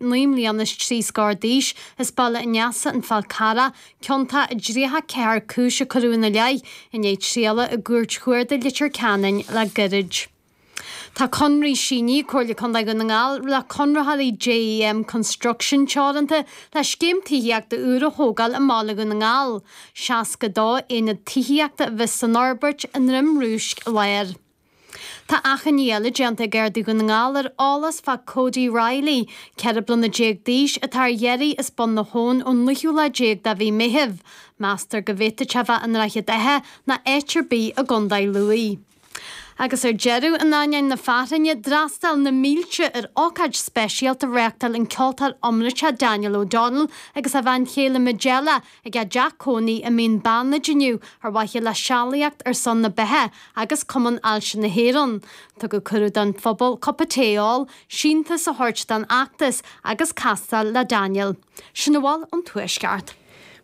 Naoi mbliana is trí scór d'aois, is baile in aice an Fháil Charraigh, ciontach i dtríocha ceathair cúis a cuireadh ina leith i ndiaidh trialach i gCúirt Chuarda Litir Ceanainn le goirid. Tá conradh síníthe ag Comhairle Contae Dhún na nGall le conraitheoirí JEM Construction Teoranta le scéim tithíochta úr a thógáil i mBaile Dhún na nGall. Seasca dó aonad tithíochta a bheas san fhorbairt i nDroim Rúisc Láir. Tá achainí eile déanta ag Gardaí Dhún na nGall ar eolas fá Cody Riley, 14 bliana d'aois, atá ar iarraidh as Bun an Fhóid ón naoú lá déag de mhí Meithimh. Meastar go bhféadfadh sé bheith i nDroichead Átha ná áit ar bith i gCondae Lú. Agus ar deireadh, in aineoinn na fearthainne, d'fhreastail na mílte ar ócáid speisialta a reáchtáil an ceoltóir iomráiteach Daniel O'Donnell agus a bhean chéile Majella, Ag a dteach cónaí i Mín Beannaid inniu, ar mhaithe le sealaíocht ar son na beatha agus Cumann Ailse na hÉireann. Tugadh cuireadh don phobal cupa tae a ól, síntiús a thabhairt don fheachtas agus castáil le Daniel. Sin a bhfuil ón Tuaisceart.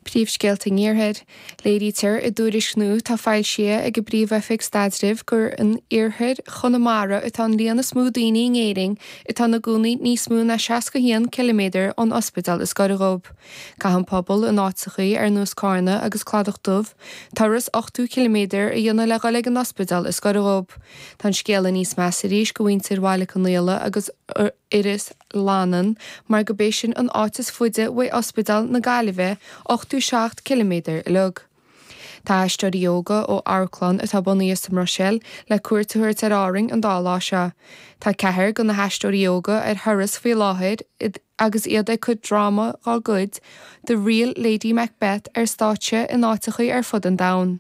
Príomhscéalta an Iarthair. Léirítear i dtuairisc nua atá foilsithe ag an bPríomh-Oifig Staidrimh gur in iarthar Chonamara atá an líon is mó daoine in Éirinn atá ina gcónaí níos mó ná 61 ciliméadar ón ospidéal is gaire dhóibh. Caitheann pobail in áiteachaí ar nós Cárna agus Cladach Dubh turas ochtó ciliméadar a dhéanamh le dhul ag an ospidéal is goire dhóib. Tá an scéal níos measa arís go mhuintir Bhaile Conaola agus Iorras Fhlannáin mar gob é sin an áit is fuide uaidh ospidéal na Gaillimhe, ochtó seacht ciliméadar uilig. Tá aisteoirí óga ó amharclann atá bunaithe sa mBruiséil le cuairt a thabhairt ar Árainn an dá lá seo. Tá ceathrar de na haisteoirí óga ar thuras faoi láthair agus iad ag cur dráma dá gcuid, The Real Lady Macbeth ar stáitse in áiteachaí ar fud an domhain.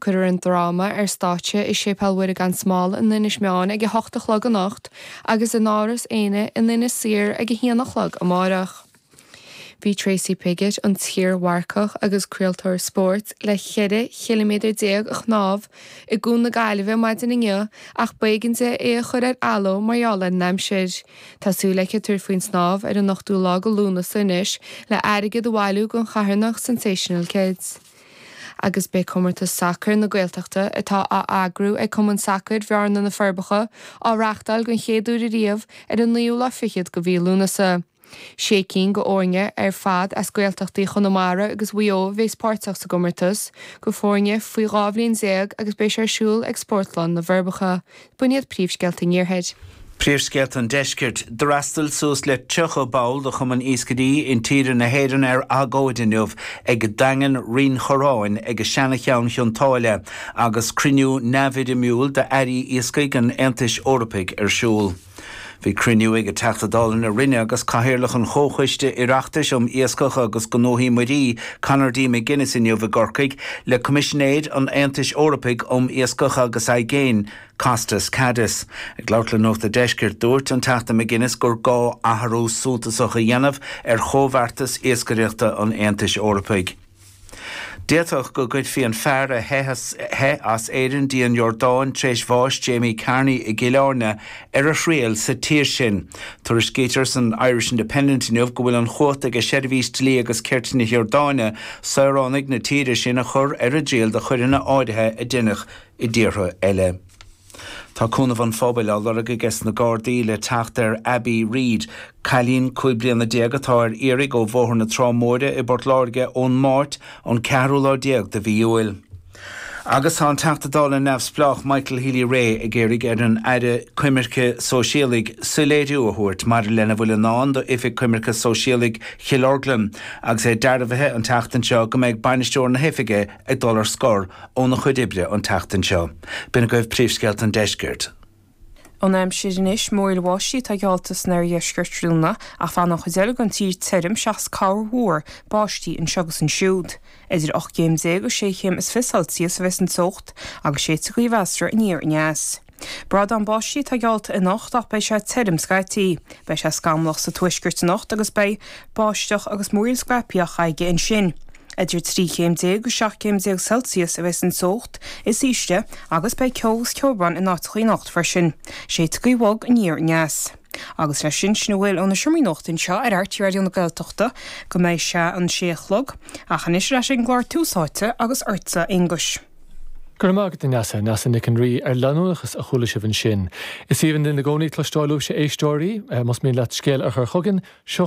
Cuirfear an dráma ar stáitse i Séipéal Mhuire Gan Smál in Inis Meáin ag a hocht a chlog anocht agus in Áras Éanna in Inis Oírr ag a haon a chlog amárach. Bhí Tracy Piggott, an t-iarmharcach agus craoltóir spóirt le 14 chiliméadar a shnámh i gCuan na Gaillimhe maidin inniu ach b'éigean di é a chur ar athló mar gheall ar an aimsir. Tá súil aici tabhairt faoin snámh ar an ochtú lá go Lúnasa anois le airgead a bhailiú don charthanacht Sensational Kids. Agus beidh comórtas sacair na Gaeltachta, atá á eagrú ag Cumann Sacair Bhearna-Na Forbacha, á reáchtáil den chéad uair ariamh ar an naoú lá fichead go mhí Lúnasa. Sé cinn go fhoirne ar fad as Gaeltachtaí Chonamara agus Mhaigh Eo a bheas páirteach sa gcomórtas, go fhoirne faoi dhá bhliain déag agus beidh sé ar siúl ag Spórtlann na bhForbacha. B'in iad príomhscéalta an Iarthair. Príomhscéalta an Deiscirt. D'fhreastail suas le 30 ball de Chumann Iascairí Intíre na hÉireann ar agóid inniu ag Daingean Rinn Chorráin, ag Seana-Cheann Chionn tSáile agus cruinniú neamhfhoirmiúil d'Airí Iascaigh an Aontais Eorpaigh ar siúl. Bhí cruinniú ag Teachta Dála na Rinne agus Cathaoirleach an Chomhchoiste Oireachtais um Iascach agus Gnóthaí Muirí, Conor D. McGuinness inniu i gCorcaigh le Coimisinéir an Aontais Eorpaigh um Iascach agus Aigéin, Costas Kadis. Ag labhairt le Nuacht a' Deiscirt, dúirt an Teachta McGuinness gur gá athrú suntasach a dhéanamh ar chomhbheartas iascaireachta an Aontais Eorpaigh. D'fhéadfadh go gcuirfí an fear a theith as Éirinn dtí an Iordáin tar éis bháis Jamie Carney i gCill Airne ar a thriail sa tír sin. Tuairiscítear san Irish Independent inniu go bhfuil an chumhacht aige Seirbhís Dlí agus Cirt na hIordáine saoránaigh na tíre sin a chur ar a dtriail do choireanna áirithe a deineadh i dtíortha eile. Tá cúnamh an phobail á lorg aige sna Gardaí le teacht ar Abbie Reid, cailín cúig bliana déag atá ar iarraidh ó Bhóthar na Trá Móire i bPort Láirge ón Máirt, an ceathrú lá déag de mhí Iúil. Agus tá an Teachta Dála neamhspleách Michael Healy-Rae ag iarraidh ar an Aire Coimirce Sóisialaigh soiléiriú a thabhairt maidir lena bhfuil i ndán d'Oifig Coimirce Sóisialaigh Chill Orglan agus é dearbhaithe an tseachtain seo go mbeidh bainisteoir na hoifige ag dul ar scor óna chuid oibre an tseachtain seo. B'in agaibh príomhscéalta an deiscirt. An aimsir anois, múraíl bháistí atá geallta san oirdheisceart tráthnóna, ach beidh an chuid eile den tír tirim seachas corrmhúr báistí anseo agus ansiúd. Idir ocht gcéim déag agus sé chéim is fiche Celsius a bheas an teocht, agus séidfidh gaoth mheasartha aniar aneas. Brádán báistí atá geallta anocht ach beidh sé tirim scaití. Beidh sé scamallach sa tuaisceart anocht agus beidh báisteach agus múraíl scaipthe aige ansin. Idir trí chéim déag agus seacht gcéim déag Celsius a bheas an teocht is ísle agus beidh ceo agus ceobhrán in áiteacha anocht freisin. Séidfidh gaoth bhog aniar aneas. Agus leis sin, sin a bhfuil ó na seomraí nuachta anseo ar RTÉ Raidió na Gaeltachta go mbeidh sé an sé a chlog. Ach anois ar ais ag an gclár Tús Áite agus ortsa, a Aonghuis. Go raibh maith agat, a Neasa, Neasa Nic an Rí, ar leanúnachas a chuala sibh ansin. Is aoibhinn linn i gcónaí cloisteáil uaibhse a éisteoirí. Más mian leat scéal a chur chugainn, seo